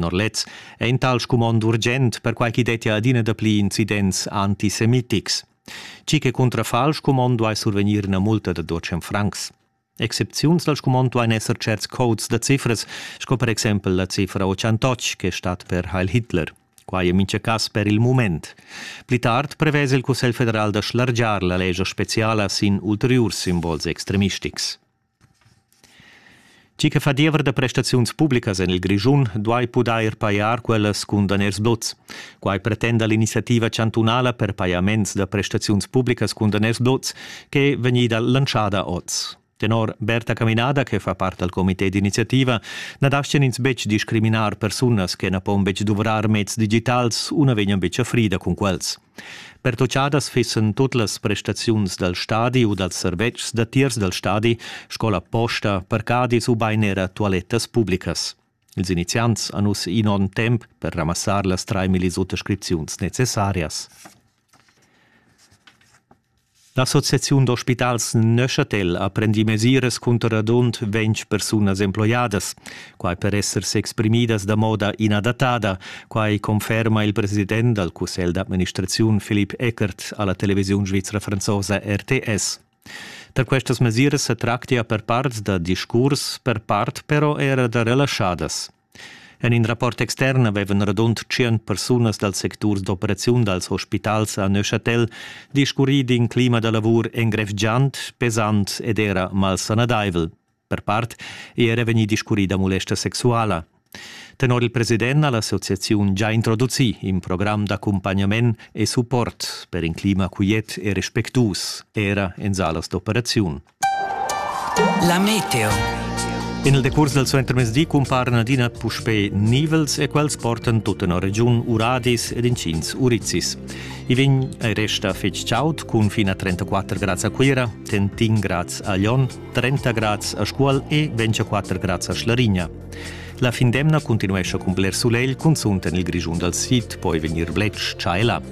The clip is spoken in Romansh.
tenor lez, è in tal scumond urgent perquai ch'i dettia adina dapli incidents antisemitics. Tgi che cuntrafà al scumond duai survegnir ina multa da 200 francs. Excepziuns dal scumond duain esser certs codes da cifras, sco per exempel la cifra 88 che stat per Heil Hitler. Quai è mintga cas per il mument. Pli tard prevesa il Cussegl federal da schlargiar la lescha speciala sin ulteriurs simbols extremistics. Tgi che fa diever da prestaziuns publicas en il Grischun duai pudair pajar quellas cun daners dots. Quai pretenda l'iniziativa chantunala per pajaments da prestaziuns publicas cun daners dots che è vegnida lantschada oz. Tenor Berta Caminada, che fa part dal comité d'iniziativa, na daschian ins betg discriminar persunas che na pon betg duvrar meds digitals u na vegnan betg a frida cun quels. Pertutgadas fissen tut las prestaziuns dal stadi u dals servetschs datiers dal stadi, scola posta, parcadis ubain era tualettas publicas. Ils iniziants han uss in onn temp per ramassar las 3.000 suttascripziuns necessarias. L'associaziun d'ospitals Neuchâtel ha prendì mesiras cunter radund ventg persunas emploiadas. Quai per esser s'exprimidas da moda inadattada. Quai conferma il president dal cussegl d'administraziun Philipp Eckert a la televisiun svizra franzosa RTS. Per questas mesiras sa tractia per part da discurs, per part però era da relaschadas. En in rapport extern avevan radund tschient persunas dal sectur d'operaziun dals ospitals a Neuchâtel discurrì d'in clima da lavur engrevgiant, pesant ed era malsanadaivel. Per part è era vegnì discurrì da mulesta sexuala. Tenor il president ha l'associaziun già introducì in program d'accumpagnament e support per in clima quiet e respectuus, era en salas d'operaziun. La meteo. In il decurs dal suentermezdi cumparan adina puspè nivels e quels portan tut en regiun Uradis ed incins Urizis. I vegn e resta fitg chaud cun fin a 34 grads a Cuira, Tentin grads a Lyon, 30 grads a Scuol e 24 grads a Schlarigna. La fin d'emna continuescha cun bler sulegl, cunzunt en il Grischun dal sid, poi vegnir bletsch tschaila.